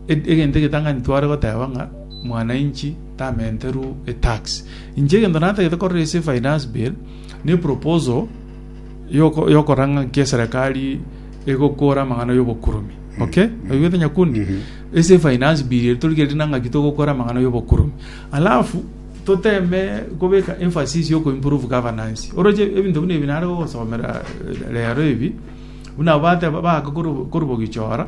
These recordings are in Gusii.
Egento egetang'ani tware goteba ng'a mwananchi tamenterwe etax. Inche egento natagete korora ase finance bill, ne proposal yokora ng'a nki eserekari egokora amang'ana y'obokuromi. Mm-hmm. Okay? Mm-hmm. Oigwete Nyakundi? Mm-hmm. Ase finance bill eri tori kerire nang'aki togokora amang'ana y'obokuromi. Alafu toteme kobeka emphasis yo improve governance. Oroche ebinto buna ebi nare gogosomera eh, rero ebi, buna bateba baka korubogichora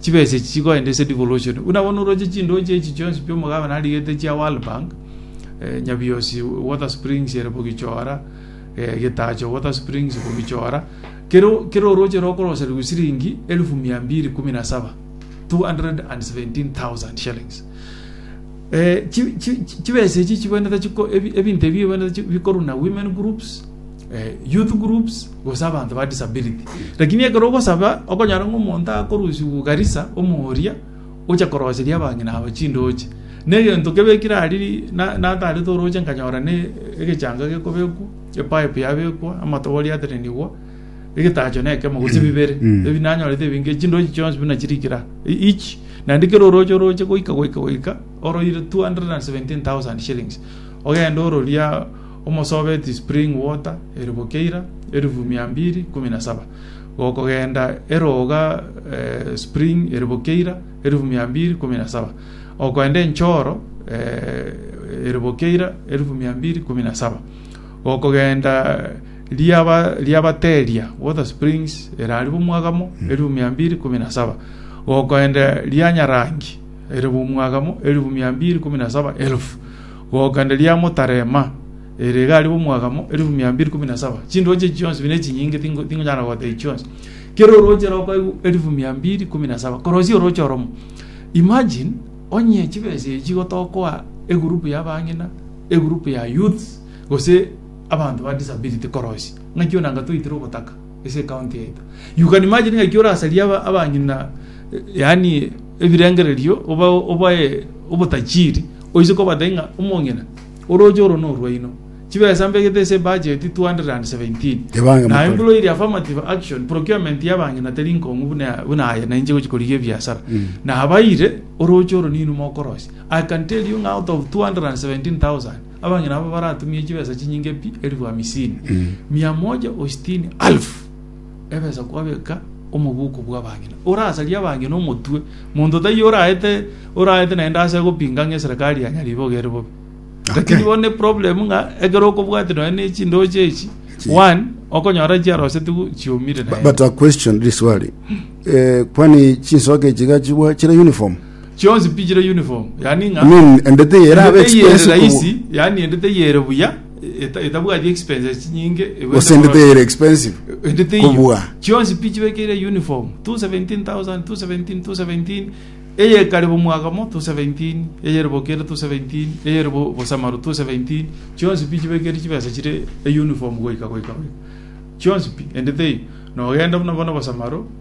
chibesa echi chigoenda ase devolution buna bono oroche chindoche echi chionsi pi omogabane arigete chia world bank eh, nyabiosi water springs ere bogichora eh, getacho water springs bogichora kero kero oroche rokoroserigwa siringi elfu mia mbiri kumi na saba 217000 shillings Chibesa echi chibwenerete chiko ebinto ebi ebwenerete bikorwa na women groups, youth groups gose abanto ba disability. Lakini ekero ogosaba okonyora ng'a omonto akorusiwu Garissa omooria oche koroseria abang'ina aba chindoche. Na egento kebekire aria natarete oroche nkanyora ne egechanga gekobekwa, epipe yabekwa, amatobori atenenigwa. egetacho na ekemo gose bibere Mm. ebi nanyorete ebinge chindochi chionsi buna chirikira each naende kera oroche oroche goika goika goika oroire 217000 shillings ogende ororia omosobeti spring water eribo keira erifu mia mbiri kumi na saba gokogenda eroga eh, spring eribo keira erifu mia mbiri kumi na saba okoenda enchoro eh, eribo keira erifu mia mbiri kumi na saba gokogenda riaba riabateria, water springs, ere aria b'omwagamo, elifu mia mbiri ikomi na saba, gokoenda ria Nyarangi, ere b'omwagamo, elifu mia mbiri ikomi na saba elufu, gokoenda ria Motarema, ere iga aria b'omwagamo, elifu mia mbiri ikomi na saba. Chindooche echi chionsi buna echinyinge tingo- tingonyara gogota echi chionsi. Kera orooche roko aigwe elifu mia mbiri ikomi na saba, korosia orooche oromo. Imagine, onye chibesa echi igo tokoa egurupu y'abang'ina, egurupu ya youths, gose. Abanto ba disability korosi ng'aki ona anga toitire ogotaka ase ecounty yaito you can imagine ng'aki orasarie aba abanyina yaani ebirengererio oba obae obotachiri oise kobatebi ng'a omong'ina oroche oro norwaino chibesa mbegete ase ebudget 217 Ebange naye motore. buna oiria affirmative action procurement ya abang'ina teri nkong'u buna ya- buna aye na inche gochia korigia ebiasara nabaire oroche oro ninwe mokorosia I can tell you ng'a out of 217000 Abang'ina aba baratumie chibesa chinyinge pi elifu hamisini, mia moja o sitini alfu ebesa kwabeka omobuko bw'abang'ina. Orasarie abang'ina omotwe, monto taiyo oraete oraete naende ase gopinga ng'a eserekari ya Nyariboga ere bobe. Lakini bono eproblem ng'a ekero okobwate nonye ne chindooche echi, one, okonyora chiarosetiwu chiumire But, naende. but a question riswali eh, kwani chinsoke echi iga chibwa chire uniform chionsi pi chire uniform yaani ng'a I mean, endete eye erabe endete eye ere expensive kobo- rahisi yaani endete eye ere buya eta- etabwati expenses chinyinge egwete gose endete korora- eye ere expensive endete eyio kobua chionsi pi chibekeire uniform 217000 217 217 eye ekare bo mwaka mo 217 eye ere bo kere 217 eye ere bo bosamaru 217 chionsi pi chibekeire chibesa chire e uniform goika goika goika chionsi pi endete eyio nogenda buna bono bosamaru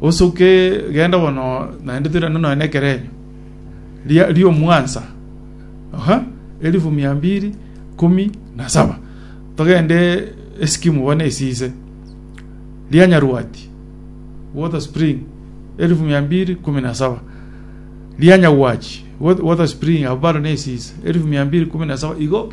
Osoke, genda bono, naende toirane nonya nekerenyo ri'omwansa, aha, elifu mia mbiri ikomi na saba, togende esikimu bono esise, ria Nyarwati water spring, elifu mia mbiri ikomi na saba, ria Nyagwachi water spring, abwo baro nesise, elifu mia mbiri ikomi na saba, igo